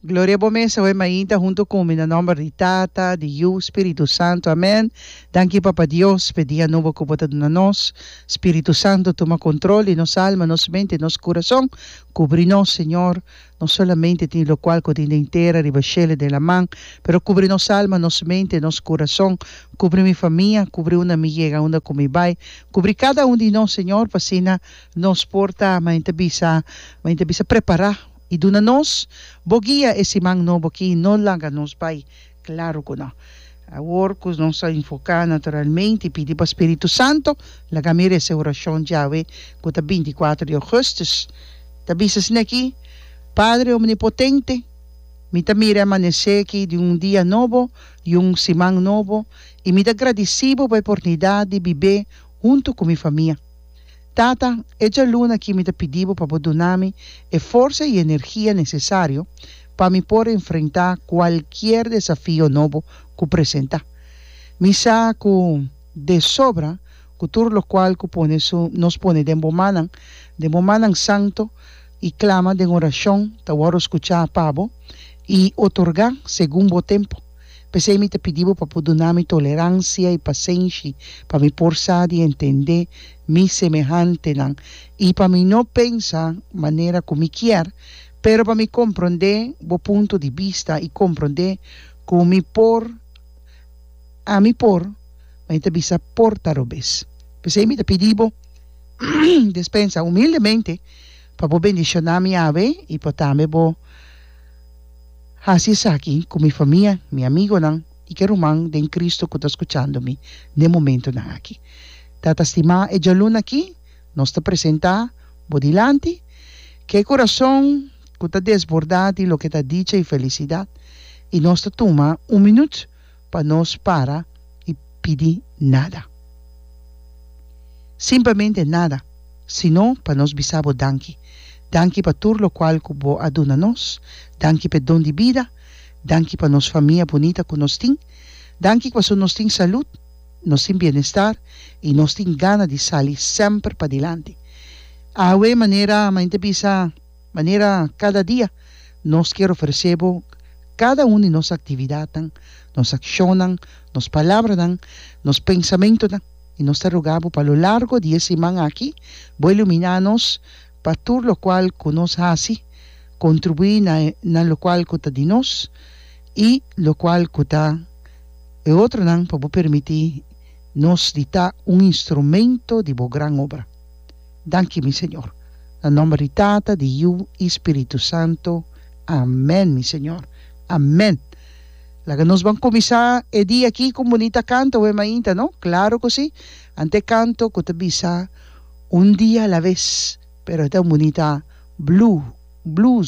Gloria bo mes awe mainta hunto cu mi na nomber di Tata, di Yu, Spiritu Santo. Amen. Danki Papa Dios p'e dia nobo cu bo ta duna nos. Spiritu Santo tuma control di nos alma, nos mente, nos curason. Cubri nos Señor. Nos solamente tin locual cu tin den tera, riba shel i den laman. Pero cubri nos alma, nos mente, nos curason. Cubri mi famia, cubri unda mi yega, unda cu mi bay. Cubri cada un di nos Señor p'asina. Nos por ta, ma en ta bisa, ma en ta bisa prepará i duna nos, Bo guia e siman nobo akí, no laga nos bai. Klaru ku no. Awor ku nos ta enfoká naturalmente i pidi pa spiritu santu, laga mi resa e orashon djawe ku ta binticuatro di ougùstus. Ta bisa asina akí, Padre omnipotente, mi ta mira e amanesé akí di un dia nobo i un siman nobo i mi ta gradisí Bo pa e oportunidat di bib'é huntu ku mi famia. Tata, e djaluna aki mi ta pidi bo pa bo duna mi e forsa i energia nesesario pa mi por enfrentá kualkier desafio nobo ku presentá. Mi sa ku de sobra ku tur lokual ku pone su nos pone den bo mannan, den bo mannan santu, i klama den orashon ta wòrdu skuchá pa bo i otorgá segun bo tempu. P'esei mi ta pidi bo pa por duna mi toleransia i pasenshi pa mi por sa di entendé mi semehantenan i pa mi no pensa manera ku mi kier, pero pa mi komprondé bo punto di bista i komprondé ku mi por a mi por mi ta bisa por ta robes. P'esei mi ta pidi bo despensa humildemente pa bo bendishoná mi awe i pa tambe bo. Hasi esaki ku mi famia, mi amigonan i ke ruman den Kristu ku ta skuchando mi den momentunan aki. Tata stimá, e djaluna aki nos ta presentá bo dilanti, ku e kurason ku ta desbordá di loke ta dicha i felisidat, i nos ta tuma un minüt pa nos para i pidi nada. Simplemente nada, sino pa nos bisa bo danki. Danki pa tur lokual ku bo a duna nos. Danki p'e don di bida. Danki pa nos famia bunita ku nos tin. Danki ku paso nos tin salud, nos tin bienestar i nos tin gana di sali semper padilanti. Awe manera Main ta bisa. Manera kada dia, nos kier ofresé bo kada un di nos aktividatnan, nos akshonnan, nos palabranan, nos pensamentunan, i nos ta rugá bo pa lo largo di e siman aki bo iluminá nos pa tur lokual ku nos hasi kontribuí na na lokual ku ta di nos i lokual ku ta e otronan pa bo permití nos di ta un instrumento di bo gran obra. Danki mi Señor. Na nomber di Tata, di Yu i Spiritu Santo. Amen mi Señor. Amen. Laga nos ban kuminsá e dia aki ku un bunita kanto wei mainta no? Klaru ku si. Ante e kanto ku ta bisa Un dia a la vez, pero e ta un bunita blues.